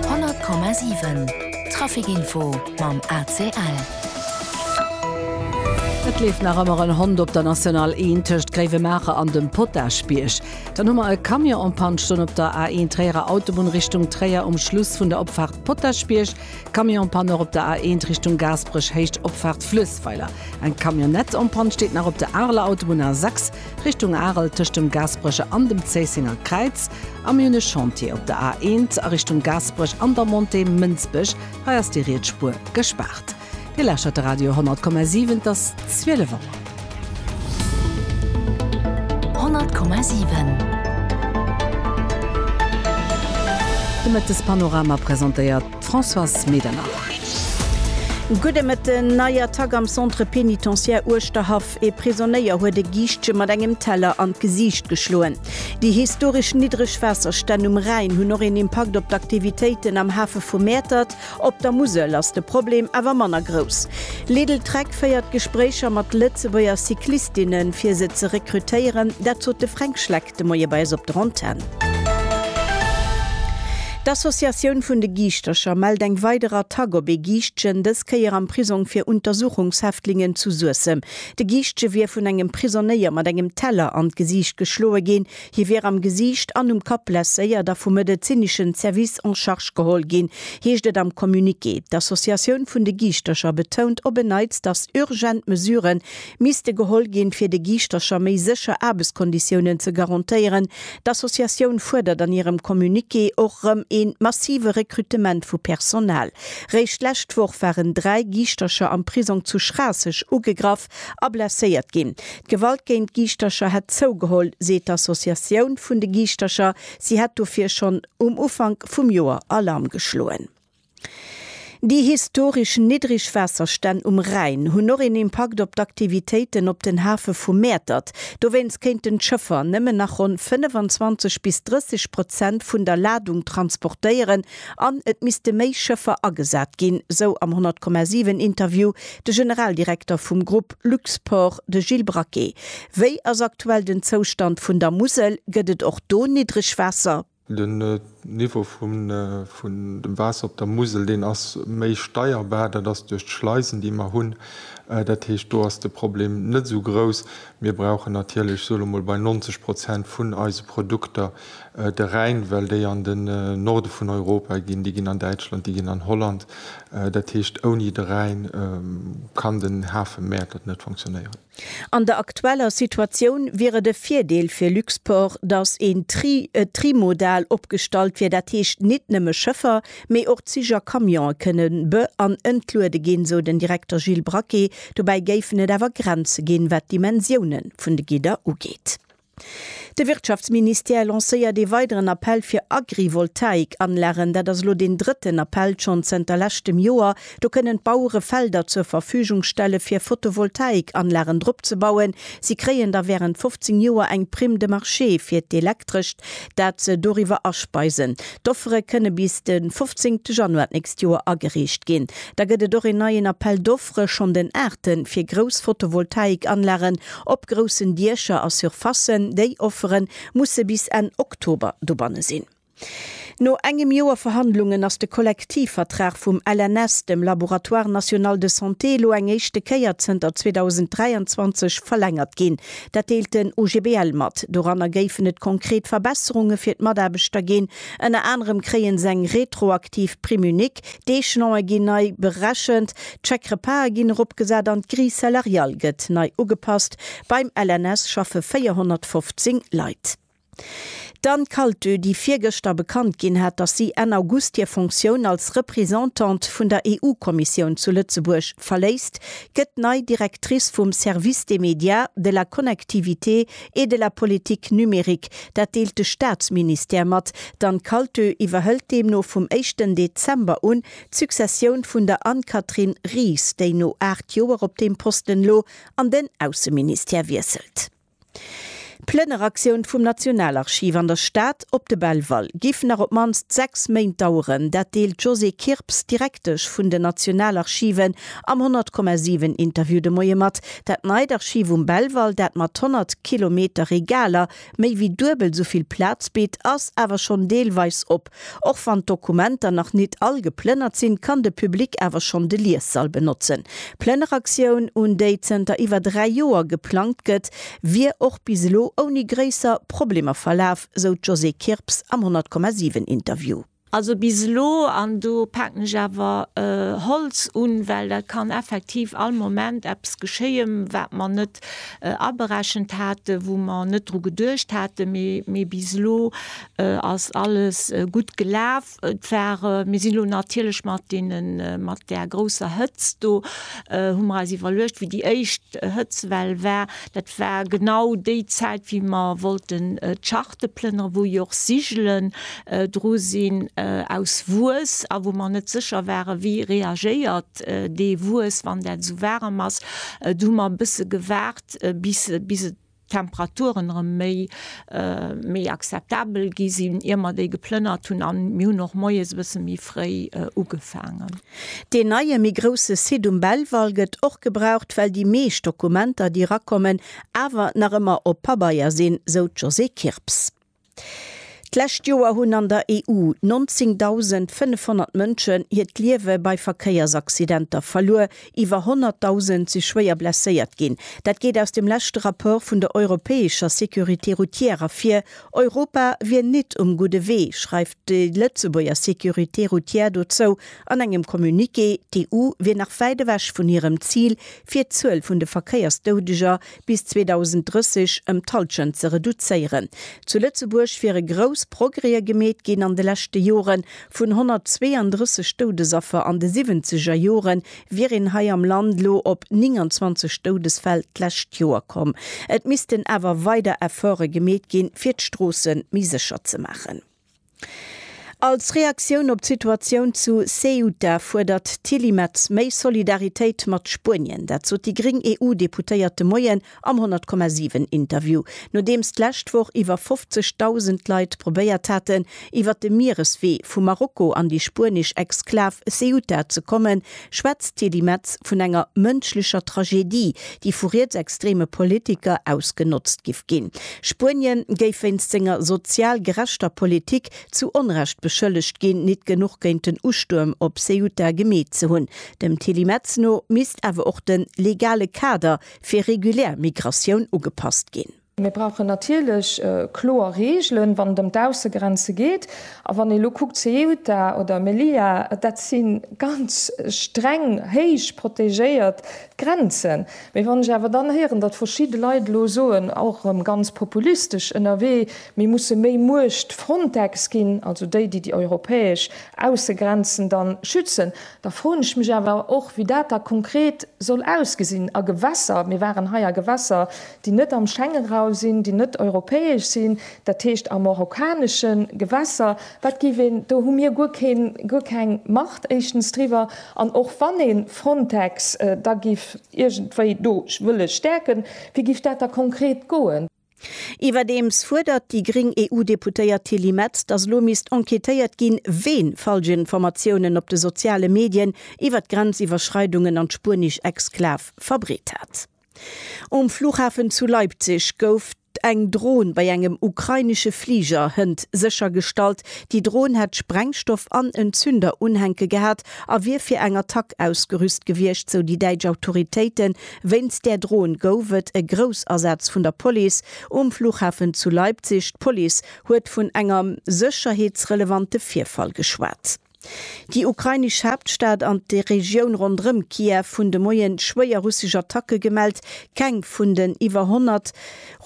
100,7 Traficinfo mam ACL. Et leeft nach ëmmer en Hond op der National 1 tëscht Gréiwemaacher an dem Potaschbierg. Dann hu mer e Camion en panne stoen op der A1 Tréierer Autobunn Richtung Tréier um Schluss vun der Opfaart Potaschbierg. Camion en panne och op der A1 Richtung Gaasperech Héicht Opfaart Fluessweiler. Eng Camionnette en panne steet nach op der Areler Autobunn A6. Richtung Arel tëscht dem Gaasperecher an dem Zéissenger Kräiz, a mir hunn e Chantier op der A1 a Richtung Gaasperech an der Montée Mënsbech, hei ass déi riets Spuer gespaart. Dir lauschtert de Radio 100,7, et ass 12 Auer. 100,7 De Mëttespanorama presentéiert d'Françoise Medernach. Gudde Mëtten, Nei Attack am Centre pénitentiaire Uerschterhaff. Ee Prisonéier huet e Giischtche mat engem Teller an d'Gesiicht geschloen. Déi historesch niddreg Waasserstänn um Rhäin hunn och een Impakt op d'Aktivitéiten am Hafe vu Mäertert. Op der Musel ass de Problem awer manner grouss. Lidl Trek féiert Gespréicher mat Lëtzebuerger Cyclistinnen, fir se ze rekrutéieren. Dat sot de Fränk Schleck. de Moie bei eis op der Antenn. D'Associatioun vun de Giischtercher mellt eng weider Attack op ee Giischtjen, dës Kéier am Prisong fir Untersuchungshäftlingen zu Suessem. De Giischtje wier vun engem Prisonéier mat engem Teller an d'Gesiicht geschloe ginn. Hie wier am Gesiicht an um Kapp blesséiert a vum medezineschen Service en charge geholl ginn, heescht et am Communiqué. D'Associatioun vun de Giischtercher betount op en Neits, datt urgent Mesuren misste geholl ginn, fir de Giischtercher méi sécher Aarbechtskonditiounen ze garantéieren. D'Associatioun fuerdert an hirem Communiqué och erëm ee massive Rekrutement vu Personal. Réischt d'lescht Woch waren dräi Giischtercher am Prisong zu Schraasseg ugegraff a blesséiert ginn. D'Gewalt géint Giischtercher hätt zougeholl, seet d'Associatioun vun de Giischtercher. Si hätt dofir schonn um Ufank vum Joer Alarm geschloen. Déi historesch niddreg Waasserstänn um Rhäin hunn och een Impakt op d'Aktivitéiten op den Hafe vu Mäertert. Dowéinst kéinten d'Schëffer nëmmen nach ronn 25 bis 30 Prozent vun der Ladung transportéieren an et misste méi Schëffer agesat ginn, sou am 100,7 Interview de Generaldirekter vum Grupp Luxport, de Gilles Braquet. Wéi ass aktuell den Zoustand vun der Musel? Gëtt et och do Niddregwaasser? Den Niveau vun dem Waasser op der Musel, deen ass méi steierbar. Dat ass duerch d'Schleisen, déi mer hunn. Dat heescht, do ass de Problem net esou grouss. Mir brauchen natierlech, ech soen elo mol bei 90 Prozent vun eise Produkter de Rhäin, well déi an den Norde vun Europa ginn, déi ginn an Däitschland, déi ginn an Holland. Dat heescht, ouni de Rhäin kann den Hafe Mäertert net funktionéieren. An der aktueller Situatioun wier et e Virdeel fir Luxport, datt een Tri trimodal opgestallt wier, dat heescht nit nëmme Schëffer, mee och Zich a Camionen kënne be an entluede ginn, esou den Direkter Gilles Braquet. Dobäi géifen et awer Grenze ginn, wat d'Dimensiounen vun de Gidder ugeet. De Wirtschaftsministère lancéiert ee weideren Appell fir Agrivoltaik-Anlagen. Dat ass elo deen drëtten Appell schonn zënter leschtem Joer. Do kënnen d'Bauere Felder zur Verfügung stelle fir Photovoltaik-Anlagen drop ze bauen. Si kréien da wärend 15 Joer eng Prime de marché fir d'Elektrescht, dat se doriwwer aspeisen. D'Offere kënne bis de 15 Januar d'nächst Joer agereecht ginn. Da gëtt et och een neien Appel d'offres. Opfere schonn den Aarte fir grouss Photovoltaikanlagen op groussen Diecher a Surfacen. Déi Offere musse bis Enn Oktober dobanne sinn. No engem Joer Verhandlungen ass de Kollektivvertrag vum LNS, dem Laboratoire National de Santé, elo eng éischte Kéier zënter 2023 verlängert ginn. Dat deelt den OGBL mat. Doranner géifen et konkret Verbesserunge fir d'Mataarbechter ginn. Ënner anerem kréie se eng retroaktiv Prime unique. D'Echelone ginn nei berechent, d'Chèque-repasen ginn eropgesat an d'Grille salariale gëtt nei ugepasst. Beim LNS schaffe 415 Leit. D'Anne Kaltö, déi virgëschter bekannt ginn hat, datt si Enn August hir Fonctioun als Representante vun der EU-Kommissioun zu Lëtzebuerg verléisst, gëtt nei Directrice vum Service des médias, de la connectivité et de la politique numérique, dat deelt de Staatsministère mat, d'Anne-Calltö iwwerhëlt deemno vum éischten Dezember un d'Successioun vun der Anne-Catherine Ries, déi no aacht Joer op deem Posten elo an den Ausseministère wiesselt. D'Plënneraktioun vum Nationalarchiv an der Stad op de Belval giff nach op d'mannst sechs Méint daueren, dat deelt d'Josée Kirps, Direktesch vun den Nationalarchiven am 100,7 Interview de Moie mat. Dat neit Archiv um Belval, dat mat 100 Kilometer Regaler méi wéi duebel sou vill Plaz bitt, ass awer schonn deelweis op. Och wann d'Dokumenter nach nit all geplënnert sinn, kann de Public awer schonn de Liessall benotzen. D'Plënneraktioun, un déi zënter iwwer dräi Joer geplangt gëtt, wier och bis elo ouni gréisser Problemer verlaf, sou d'Josée Kirps am 100,7 Interview. Also bis elo, an do paken ech awer Holz un, well dat kann effektiv all Moment eppes geschéien, wat mer net aberechent haten, wou mer net dru geduecht haten, mee bis elo ass alles gutt gelaf. Et war, mir sinn elo natierlech mat deenen, mat där grousser Hëtzt do, hu mer eis iwwerluecht, wéi déi éischt Hëtzwell war, dat war genau déi Zäit, wéi mer wollten d'Schach. Opteplener, wou jo och Sigelen dru sinn aus Wues a wou mer net sécher waren, wéi reagéiert dee Wues, wann dat esou waarem ass. Do hu mer e bësse gewaart, bis d'Temperaturen erëm méi akzeptabel gi sinn, ier mer déi geplënnert hunn. A mir hunn och moies e bësse méi fréi ugefaangen. Deen neie méi grousse Site um Belval gëtt och gebraucht, well déi meescht Dokumenter, déi erakommen, awer nach ëmmer op Pabeier sinn, sou d'Josée Kirps. D'lescht Joer hunn an der EU 19.500 Mënschen hiert Liewe bei Verkéiersaccidenter verluer, iwwer 100.000 si schwéier blesséiert ginn. Dat geet aus dem leschte Rapport vun der europäescher Sécurité routière ervir. Europa wier nit um gudde Wee, schreift Déi Lëtzebuerger Sécurité routière dozou an engem Communiqué, d'EU wier nach wäit ewech vun hirem Zil, fir d'Zuel vun de Verkéiersdoudeger bis 2030 ëm d'Hallschent ze reduzéieren. Zu Lëtzebuerg wiere grouss Progrèe gemeet ginn an de leschte Joren, vun 132 Doudesaffer an de Siwwenzeger Jore wier een hei am Land elo op 29 Doudesfäll d'lescht Joer komm. Et missten awer weider Efforte gemeet ginn, fir d'Stroosse méi sécher ze maachen. Als Reaktioun op d'Situatioun zu Ceuta fuerdert d'Tilly Metz méi Solidaritéit mat Spuenien. Dat sot déi gréng EU-Deputéiert de Moien Am 100,7 Interview, nodeems d'lescht Woch iwwer 50.000 Leit probéiert haten, iwwer de Miereswee vu Marokko an déi spuenesch Exklav Ceuta ze kommen, schwätzt d'Tilly Metz vun enger mënschlecher Tragedie, déi vu rietsextreme Politiker ausgenotzt giff ginn. Spuenien géif wéinst senger sozial gerechter Politik zu Onrecht beschëllegt ginn, nit genuch géint den Ustuerm op Ceuta gemeet ze hunn. Dem Tilly Metz no misst awer och de legale Kader fir regulär Migratioun ugepasst ginn. Mir brauchen natierlech kloer Reegelen, wann et ëm d'Aussegrenze geet. A wann ee elo kuckt, Ceuta oder Melilla, dat si ganz streng, héich protegéiert Grenzen. Mee wann ech awer dann héieren, datt verschidde Leit elo soen, och erëm ganz populistesch ënnerwee, mir musse méi Muecht Frontex ginn, also déi, déi déi europäesch Aussegrenzen da schützen, Da froen ech mech awer och, wéi dat da konkret soll ausgesinn a Gewässer. Mir waren hei a Gewässer, déi net am Schengenraum sinn, déi net europäesch sinn, dat heescht a marokkanesche Gewässer. Wat géif een, do hu mir guer keen, guer keng Macht éischtens driwwer. An och wann ee Frontex da géif iergendwéi do wëlle stäerken, wéi géif dat da konkret goen? Iwwerdeems fuerdert déi gréng EU-Deputéiert Tilly Metz, datt elo misst enquêtéiert ginn, ween falsch Informatiounen op de soziale Medien iwwer d'Grenziwwerschreidungen an d'spuenesch Exklav verbreet hat. Um Flughafen zu Leipzig gouf eng Dron bei engem ukrainesche Fliger hënt séchergestallt. Déi Dron hätt Sprengstoff an en Zünder unhänke gehat a wier fir eng Attack ausgerüst gewiescht, sou déi däitsch Autoritéiten. Wéinst där Drohn gouf et e Groussasaz vun der Police um Flughafen zu Leipzig. D'Police huet vun enger sécherheetsrelevante Virfall geschwat. Déi ukrainesch Haaptstad an d'Regioun ronderëm Kiew hunn de Moien schwéier russesch Attacke gemellt. Keng vun den iwwer 100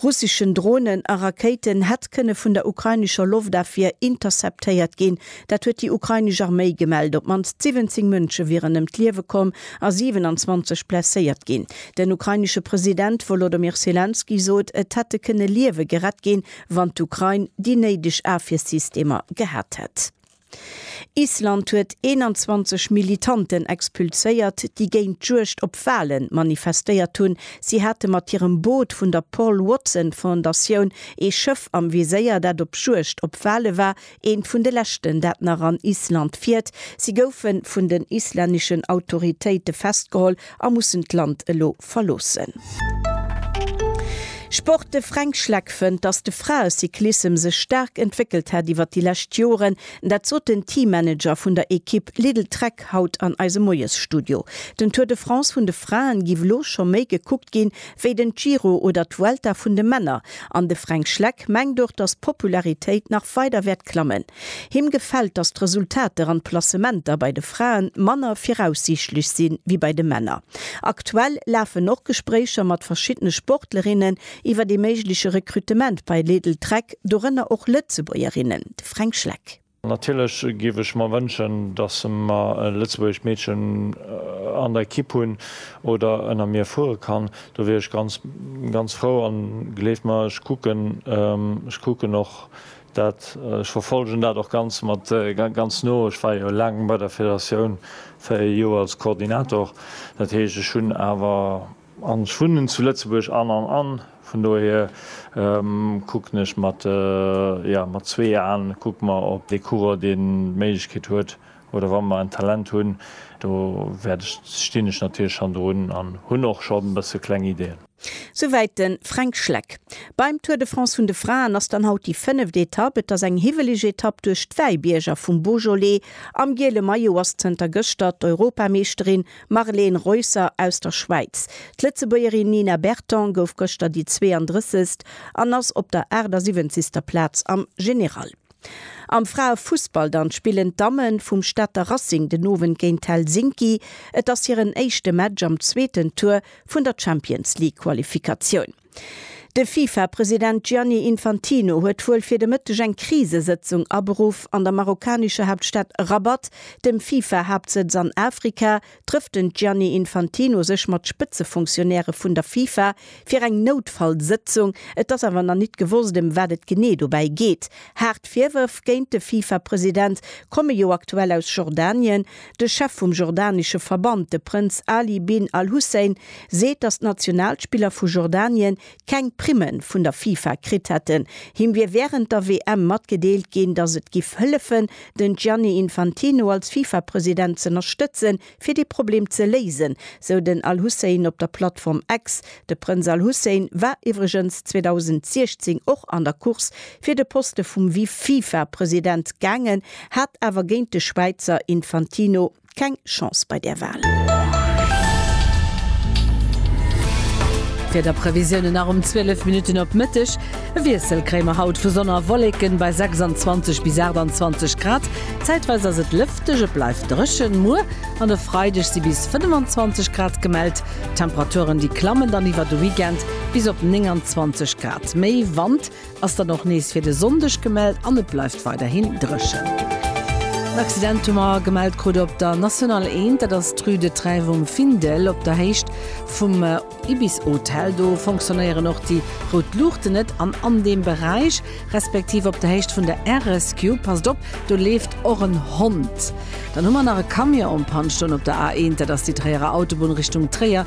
russeschen Dronen a Rakéiten hätt kënne vun der ukrainescher Loftafwier interceptéiert ginn. Dat huet déi ukrainesch Arméi gemellt. Op d'mannst 17 Mënsche wieren ëm d'Liewe komm a 27 blesséiert ginn. Den ukrainesche President Wolodymyr Selenskyj sot, et hätte kënne Liewe gerett ginn, wann d'Ukrain déi néideg Afwiersystemer gehat hätt. Island huet 21 Militanten expulséiert, déi géint d'Juegd op Wale manifestéiert hunn. Si hate mat hirem Boot vun der Paul Watson Fondatioun ee Schëff am Viséier, dat op Juegd op Wale war, eent vun de leschten, dat nach an Island fiert. Si goufe vun den islänneschen Autoritéite festgeholl a mussen d'Land elo verloossen. Sport De Fränk Schleck fënnt, datt de Fraecyclissem sech staark entwéckelt hätt iwwer déi lescht Joren. Dat sot den Teammanager vun der Ekipp Lidl Trek haut an eisem Moiesstudio. Den Tour de France vun de Fraen giff elo scho méi gekuckt ginn, wéi den Giro oder d'Vuelta vun de Männer. An de Fränk Schleck mengt och, datt d'Popularitéit nach weider wäert klammen. Him gefält, datt d'Resultater an d'Placementer bei de Frae manner viraussiichtlech si wéi bei de Männer. Aktuell lafen och Gespréicher mat verschiddene Sportlerinnen iwwer ee méigleche Rekrutement bei Lidl Trek, dorënner och Lëtzebuergerinnen, de Fränk Schleck. Natierlech géif ech mer wënschen, datt mer e lëtzebuergescht Meedchen an der Ekipp hunn oder ënner mir fuere kann. Do wier ech ganz, ganz frou. An gleeft mer, ech kucken, ech kucken och Dat, ech verfolgen dat och ganz mat, ganz no, ech war jo laang bei der Federatioun, 4 Joer als Koordinator, dat heescht ech hunn awer, an ech wunnen zu Lëtzebuerg an, an, an vun dohier kucken ech mat, jo mat zwee Aen kucke mer op dee Coureur deen d'Méiglechkeet huet oder wa mer en Talent hunn, do wäert ech, stinn ech natierlech schonn drun an hunn och scho bësse kleng Ideen. Souwäit de Fränk Schleck. Beim Tour de France vun de Fraen ass dann haut déi fënneft Etapp. Et ass eng hiwweleg Etapp duerch d'Wäibierger vum Beaujolais. Am giele Maillot ass zënter gëschter d'Europameeschterin Marleen Reusser aus der Schwäiz. D'Lëtzebuergerin Nina Berton gouf gëschter déi 32. an ass op der 78. Plaz am General. Am Fraefussball dann spillen d'Damme vum Stater Racing den Owend géint Helsinki. Et ass hiren éischte Match am zweeten Tour vun der Champions League Qualifikatioun. De Fifa-President Gianni Infantino huet wuel fir de Mëtteg eng Krisesëtzung aberuff an der marokkanescher Haaptstad Rabat, dem Fifa-Haaptsëtz an Afrika, trëfft den Gianni Infantino sech mat Spëtzefunktionäre vun der FIFA fir eng Noutfallsëtzung. Et ass awer nach nit gewosst, ëm wat et genee dobäi geet. Haart Virwërf géint de FIFA-President komme jo aktuell aus Jordanien. De Chef vum jordanesche Verband, de Prënz Ali bin al-Hussein, seet, datt d'Nationalspiller vu Jordanien keng Primmen vun der FIFA kritt hätten. Him wier wärend der WM matgedeelt ginn, datt et giff hëllefen, den Gianni Infantino als FIFA-President z'ënnerstëtzen, fir dee Problem ze léisen, sou den Al-Hussein op der Plattform X. De Prënz Al-Hussein war iwwregens 2016 och an der Course fir de Poste vum Vice-FIFA-President gaangen, hat awer géint de Schwäizer Infantino, keng Chance bei där Wahl. Wiederprevisiounen nach um 12 Minutten op Mëtteg, E Wiessel kréie mer haut, vu Sonn a Wolleken bei 26 bis 28 Grad. Zäitweis ass et lëfteg, et bleift dréchen. Muer an e Freideg si bis 25 Grad gemellt, Temperaturen déi klammen dann iwwer de Weekend bis op 29 Grad. Méi Wand Ass dann och nees fir de Sonndeg gemellt an et bleift weiderhin dréchen. En Accident hu mer gemellt krut op der National 1, dat ass d'Rue de Trèves um Findel op der Héicht vum Ibis Hotel. Do fonctionnéieren och déi rout Luuchten net an an deem Beräich, respektiv op der Héicht vun der Air Rescue, passt op, do leeft och en Hond. Dann hu mer nach e Camion en panne stoen op der A1, dat ass déi Tréierer Autobunn Richtung Tréier,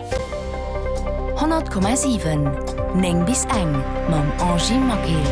100,7 9 bis eng mam Angie Maquet.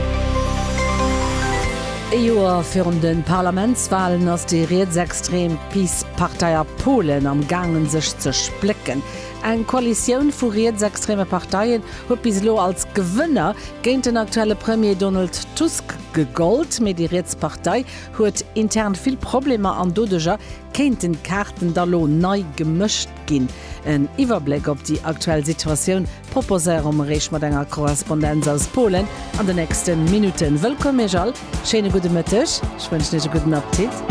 Ee Joer virun de Parlamentswalen ass déi rietsextrem PiS-Partei a Polen am gaangen sech ze splécken. Eng Koalitioun vu rietsextreme Parteien huet bis elo als Gewënner géint den aktuelle Premier Donald Tusk gegollt, mee déi riets Partei huet intern vill Problemer an doduerjer Kéinten d'Kaarten da lo nei gemëscht ginn? En Iwwerbléck op déi aktuell Situatioun proposéiere mer Iech mat enger Korrespondenz aus Polen an de nächste Minutten. Wëllkomm Iech all, schéine gudde Mëtteg, ech wënschen Iech e gudden Apptit.